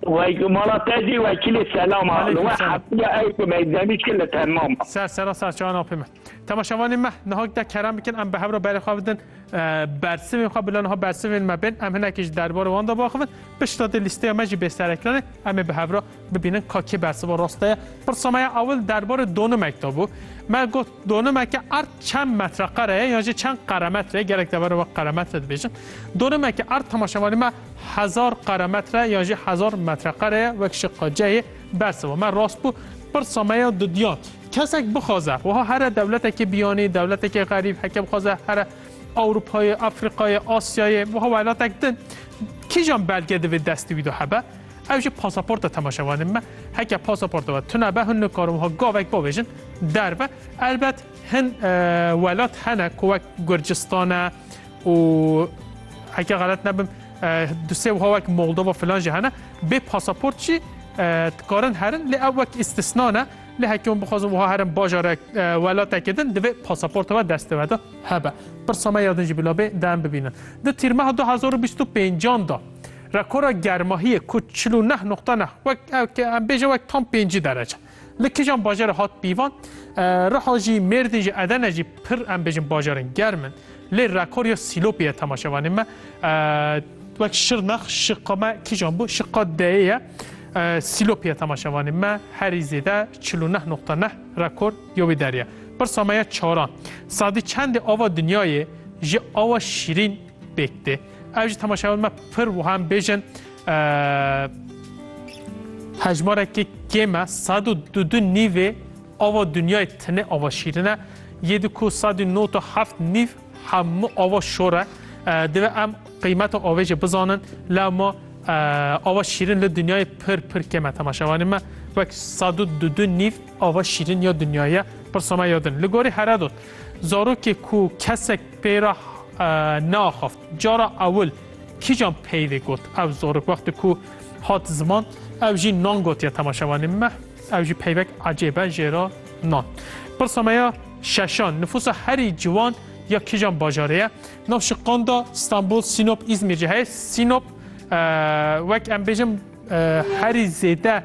Wey ku mala te jî wekîlê selam a. Li we hetiye ew ku meydanî çi li te mama. Ser sera serçeyan apê me. Temaşevanê me niha gide kerem bikin em bi hev re berê xwe bidin bersivên xwe bila niha bersivên me bên em hinekî ji derbarê wan de biaxivin pişta dê lîsteya me jî bê sereklanê em ê bi hev re bibînin ka kê bersiva rast heye. Pirsa me ya ewil derbarê donimek de bû. Me got donimeke erd çend metreqere ye yan jî çend qeremetre ye gerek deverê we qeremetre dibêjin. Donimeke erd temaşevanê me Hezar qeremetre yan jî hezar metreqere ye wek şiqaceyê bersiva. Me rast bû pirsa me ya didiyand. Kesek bixwaze wiha here dewletekê biyanî, dewletekê xerîb heke bixwaze here Ewropayê, Afrîkayê, Asyayê wiha welatek din kîjan belge divê destê wî de hebe? Ew jî pasaporta temaşevanê min be. Heke pasaporta we tune be, hûn nikarin wiha gavek bavêjin derve. Elbet hin welat hene ku wek Gurcistane, û heke xelet nebim du sê wiha wek Moldova filan jî hene bê pasaport jî dikarin herin lê ew wek îstisna ne lê heke hûn bixwazin wiha herin bajarek welatekê din divê pasaporta we destê we de hebe. Pirsa me ya din jî bila bê de em bibînin. Di tîrmeha du hezar û bîst û pêncan de rekora germahiyê ku çil û neh noqta neh wek em bêje wek tam pêncî derece. Li kîjan bajarê hat pîvan? Riha jî, Mêrdîn jî, Edene jî pir em bêjin bajarên germ in. Lê rekor ya Sîlopê ye temaşevanê me. Wek Şirnex, şiqa me kîjan bû? Şiqa deyê ye. Sîlopê ye temaşevanê me. Herî zêde çil û neh noqta neh rekor ya wê derê ye. Pirsa me ye çaran. Sadî çendê ava dinyayê ji awa şîrîn pêk tê? Ev jî temaşewan me pir wiha em bêjin hejmarekî kêm e sed û du du nîvê ava dinyayê tine ava şîrin e yê di ku sed û nod û heft nîv hemû ava şor e divê em qîmeta avê jî bizanin la ma ava şîrin li dinyayê pir pir kêm e temaşewanê me wek sed û du du nîv ava şîrin ya dinyayê pirsa me yadin li gorî heredot zarokê ku kesek Pê re neaxaft. Cara ewil kîjan peyvê got ev zorik wextê ku hat ziman ew jî nan gotiye temaşevanê me ew jî peyvek ecêb e jêra nan. Pirsa me ya şeşan nifûsa herî ciwan ya kîjan bajarê ye? Nav şiqan de Stenbol, Sînop, Îzmîr jî heye. Sînop wek em bêjim herî zêde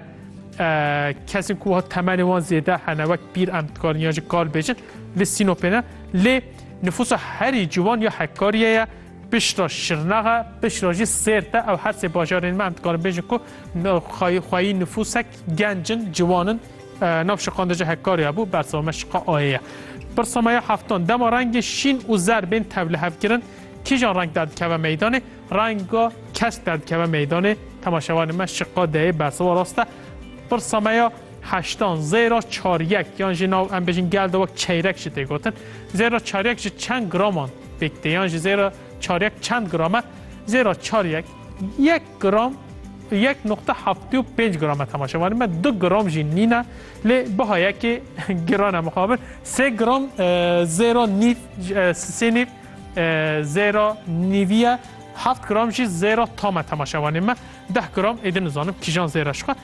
kesên ku wiha temenê wan zêde hene wek pîr em dikarin yan jî kal bêjin li Sînopê ne lê Nifûsa herî ciwan ya hekkariyê ye, piştre şirnex e, piştre jî sêrt e. Ew her sê bajarên me em dikarin bêjin ku xweyî nifûsek genc in, ciwan in. Nav şiqan de jî hekkarî hebû, bersiva me şiqa ayê ye. Pirsa me ya heftan, dema rengê şîn û zer bên tevlihevkirin, kîjan reng derdikeve meydanê? Renga kesk derdikeve meydanê. Temaşevanên me şiqa deyê, bersiva rast e. Pirsa me ya Heştan, zêra çaryek yan jî nav em bêjin gel de wek çeyrek jî tê gotin. Zêra çaryek ji çend graman pêk tê yan jî zêra çaryek çend gram e? Zêra çaryek yek gram yek nokta heftê û pênc gram e temaşe wanî me du gram jî nîn e lê biha yekê giran e mixabir sê gram e, zêra nîv e, sê nîv e, zêra nîvî ye heft gram jî zêra tam e temaşe wanî me deh gram êdî nizanim kîjan zêra şixwe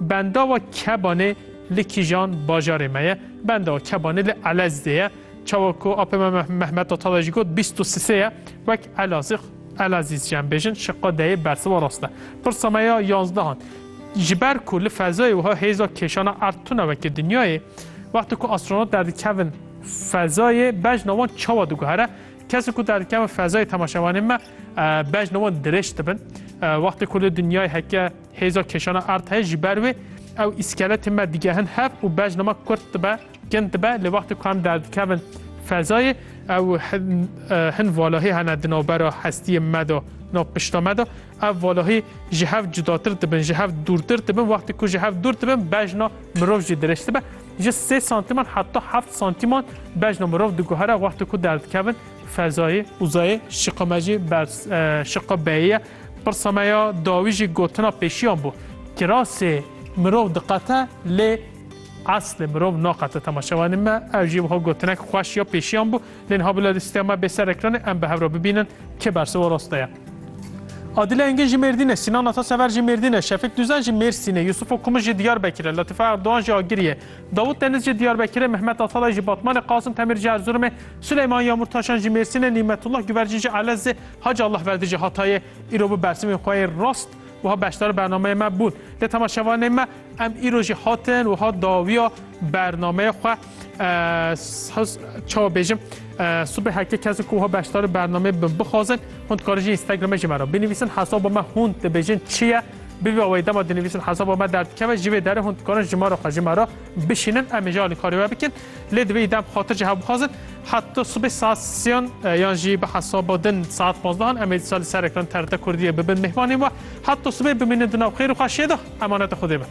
Bendava Kebanê li kîjan bajarê me ye? Bendava Kebanê li Elezdê ye. Çawa ku apê me Mehmet Atalay jî got bîst û sisê ye. Wek Elazix, Elazîz jî em bêjin şiqa deyê bersiva rast e. Pirsa me ya yanzdehan. Ji ber ku li fezayê wiha hêza kêşana erd tune weke dinyayê, wextê ku astronot derdikevin fezayê bejna wan çawa diguhere? Kesên ku derdikevin fezayê temaşevanên me bejna wan dirêj dibin. Wextê ku li dinyayê heke Hêza kêşana erd heye ji ber wê ew îskeletên me digehin hev û bejna me kurt dibe, kin dibe lê wextê ku em derdikevin fezayê ew hin valahî hene di navbera hestiyê me de nav pişta me de ev valahî ji hev cudatir dibin ji hev dûrtir dibin wextê ku ji hev dûr dibin bejna mirov jî dirêj dibe ji sê santiman heta heft santiman bejna mirov diguhere wextê ku derdikevin fezayê. Uzayê şiqa me jî ber şiqa beyê ye. Pirsa me ya dawî jî gotina pêşiyan bû. Kirasê mirov diqete lê eslê mirov naqete temaşe wanî me ew jî wiha gotinek xweş ya pêşiyan bû lê niha bila lîsteya me bê ser ekranê em bi hev re bibînin kê bersiva raste ye. Adile Engin jî Mêrdîne, Sînan Atasever jî Mêrdîne, Şefik Dûzen jî Mêrsîne, Yusufo Kumu jî Diyarbekir e, Latife Erdogan jî Agirî ye, Davut Deniz jî Diyarbekir e, Mehmet Atalay jî Batmanê, Qasim Temir jî Erzurumê, Suleyman Yamurtaşan jî Mêrsîne, Nîmetullah Guvercî jî Elezê, Hacı Allah verdi jî Hatayê îro bi bersimên xwe yê rast wiha beşdar bernameyê me bûn. Lê temaşevanên me em îro jî hatin wiha dawiya bernameyê xwe çawa bêjim subê heke kes ku wiha beşdar bernameyê bin bixwazin hûn dikarin jî Instagramê jî me re binivîsin hesaba me hûn dibêjin çi ye bi vî wê dema dinivîsin hesaba me derdikeve ji vê derê hûn dikarin ji me re xwe ji me re bişînin em ê jî alîkarî we bikin. Lê divê îdam xatir jî hewbixwazin. Heta sibê saet siyan yan jî bi hesaba din saet pazdeh'an em ê disa li ser ekran TRT Kurdiyê bibin mêhmanên we. Heta sibê bimînin di nav xêr û xweşiyê de. Emaneta Xwedê be.